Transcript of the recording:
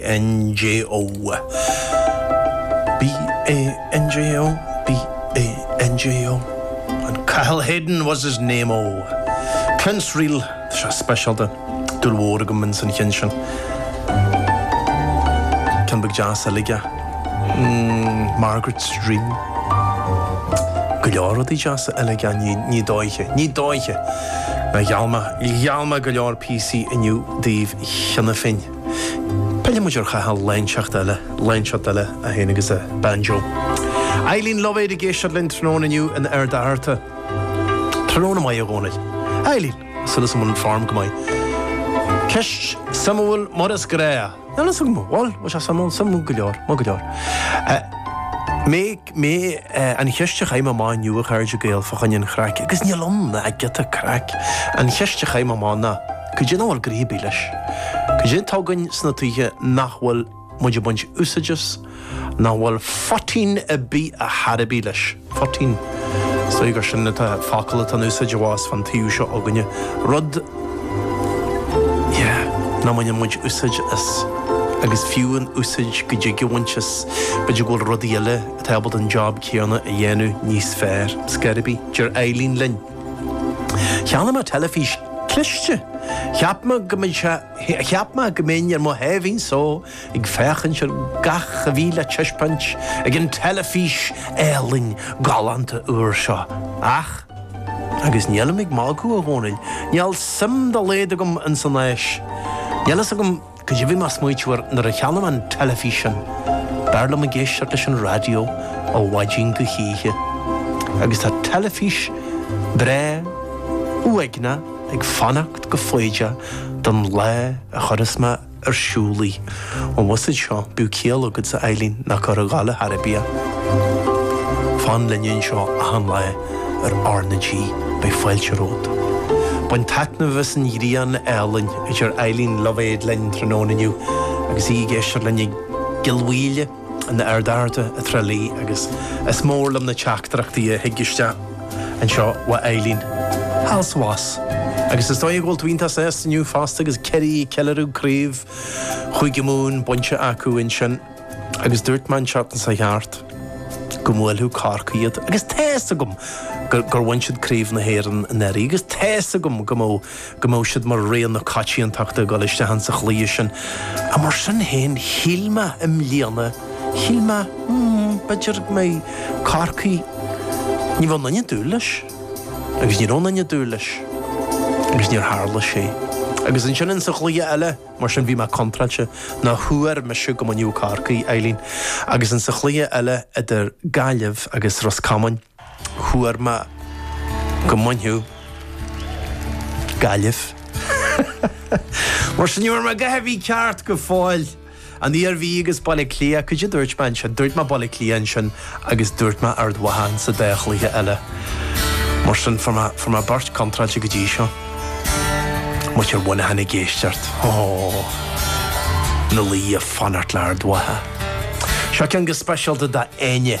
NJO. BANJO, BANJO, and Cathal Hayden was his name-o! Prince Reel, tá sé speisialta, dúil mhór agam ins an cheann sin. Ceann beag deas uilig é. Margaret's Dream. Go leor rudaí deasa uilig ann, ar ndóiche, ar ndóiche! Gheall mé, gheall mé go leor píosaí inniu daoibh cheana féin. Pillfidh muid ar Chathal lá inteacht eile, lá inteacht eile é féin agus a banjo. Eileen Luibhéad ag éisteacht linn tráthnóna inniu in Ard Fhearta. Tráthnóna maith, a Dhónaill. Eileen! Súil is go bhfuil an form go maith. Ceist suimiúil mar is gnáth. Bhuel, bhuel, bhuel, bhuel, suimiúil, suimiúil go leor, maith go leor. Mé. mé an cheist a chaith mé amach inniu, a chairde Gael, fá choinne an chraic, agus níl ann ach giota craic, an cheist a chaith mé amach ná, cad é nach bhfuil gnoithe ar bith leis? Cad é atá againn sna tithe nach bhfuil muid ag baint úsáid as, nach bhfuil phoitín ar bith ar chor ar bith leis? Phoitín? Is dóigh gur sin an focal atá in úsáid abhus fán taobh seo againne. Rud. Yeah, nach mbaineann muid úsáid as, agus fiú an úsáid a dtig a bhaint as, b'fhéidir go bhfuil rudaí eile atá ábalta an job céanna a dhéanamh níos fearr. Ar scor ar bith. Deir Eileen linn. Cheannaigh mé teilifís cliste. Cheap mé go mbeidh sé, cheap mé go mbeinn ar mo sháimhín só ag féachaint ar gach a bhí le taispeáint ag an teilifís álainn galánta úr seo. Ach. Agus nílim ag magadh, a Dhónaill. Níl suim dá laghad agam ins an ghléas. Níl a fhios agam cad é bhí mé ag smaoitiú air nuair a cheannaigh mé an teilifíseán. B'fhearr liom ag éisteacht leis an raidió ó mhaidin go hoíche. Agus tá teilifís breá uaigneach ag fanacht go foighdeach don lá a chuirfeas mé a. ar siúl í. Ó mhuise seo, bíodh ciall agat a Eileen ná cuir ag gabháil ar chor ar bith í. Fan linne anseo achan lá ar RnaG, beidh fáilte romhat. Bain taitneamh as an ghrian álainn a deir Eileen Luibhéad linn tráthnóna inniu agus í ag éisteacht linn i gCill Mhaoile. in Ard Fhearta i dTrá Lí agus is mór liom na teachtaireachtaí a thig isteach anseo uaidh Eileen. thall is abhus agus is dóigh go bhfuil Iontas S inniu fosta agus Ciarraí ag ceiliúradh craobh Chúige Mumhan bainte acu ansin agus dúirt mé an tseachtain seo chuaigh thart go mbuailfeadh Corcaigh iad agus tá fhios agam gur bhain siad craobh na hÉireann anuraidh agus tá fhios agam go mbeadh go mbeadh siad mar rogha na coitiantachta ag dul isteach ins an chluiche sin. Mar sin féin, shíl mé i mbliana, shíl mé, mm, b'fhéidir go mbeidh Corcaigh, ní bheadh aon duine ag dúil leis. Agus ní raibh aon duine ag dúil leis. Agus níor tharla sé. Agus ansin ins an chluiche eile, mar sin, bhí mé contráilte, nó thuar mise go mbainfeadh Corcaigh, Eileen. Agus ins an chluiche eile idir Gaillimh agus Ros Comáin, Thuar mé go mbainfeadh Gaillimh Mar sin, níor mhaith mé go dtí a bhí ceart go fóill. An Iarmhí agus Baile Átha Cliath, cad é a dúirt mé ansin? Dúirt mé Baile Átha Cliath ansin agus dúirt mé Ard Mhacha insa dá chluiche eile. Mar sin, fuair mé, fuair mé beirt contráilte go dtí seo. Muintir Mhuineacháin ag éisteacht. Óóó. Nó leoga ag fanacht le Ard Mhacha. Seo ceann go speisialta do Enya.